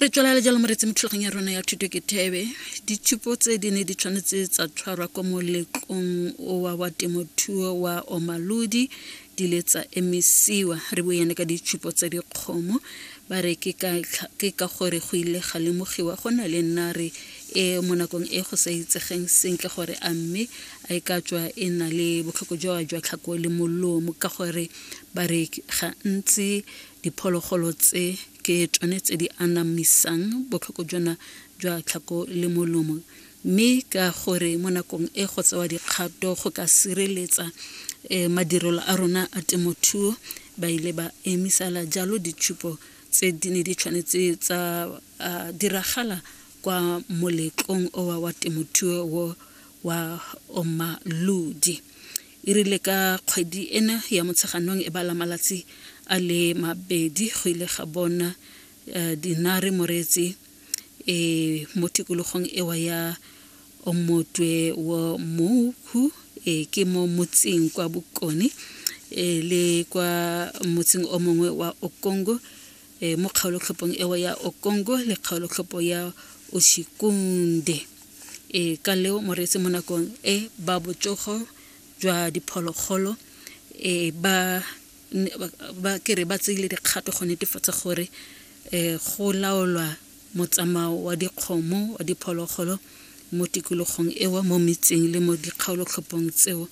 re tswelela jalo moretse mo thulagong ya rona ya thuto ke thebe ditshupo tse di ne di tshwanetse tsa tshwarwa kwa moletlong wa wa temothuo wa omalodi di le tsa emisiwa re boyane ka ditshupo tsa dikgomo ba re ke ka gore go ile ga lemogiwa go na le nare e mo nakong e go sa itsegeng sentle gore a mme a e ka tswa e na le botlhoko jwa jwa tlhako le molomo ka gore bareki gantsi Diphologolo tse ke tsone tse di anamisang botlhoko jona jwa tlhako le molomo mme ka gore mo nakong e go tsewa dikgato go ka sireletsa um madirelo a rona a temothuo ba ile ba emisala jalo ditshupo tse di ne di tshwanetse tsa diragala kwa moletlong owa wa temothuo wa Omalodi. E rile ka kgwedi ena ya Motsheganong e bala malatsi a le mabedi go ile ga bona eh, dinare moreetsi e mo tikologong ewa ya omotwe wo moukhu e ke mo motseng kwa bokone e le kwa motseng o mongwe wa okongo e, mo kgaolotlhopong eo ya okongo le kgaolotlhopo ya oshikunde e, ka leo moreetsi mo nakong e ba botsogo jwa diphologolo e, ba ba kere ba tseile dikgato go netefatsa gore um go laolwa motsamao wa dikgomo wa diphologolo mo tikologong eo mo metseng le mo dikgaolotlhopong tseo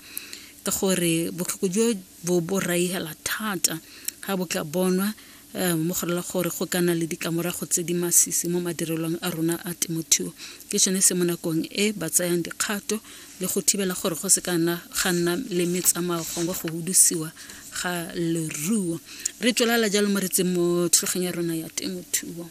ka gore botlhoko jo bo bo raihela thata ga bo tla bonwa um mo go rela gore go ka nna le ditlamorago tse di masisi mo madirelong a rona a temothuo ke sone se mo nakong e ba tsayang dikgato le go thibela gore go se ka nna ga nna le metsamao gongwe go hudusiwa ga leruo re tswelela jalo mo re tseng mo thulageng ya rona ya temothuo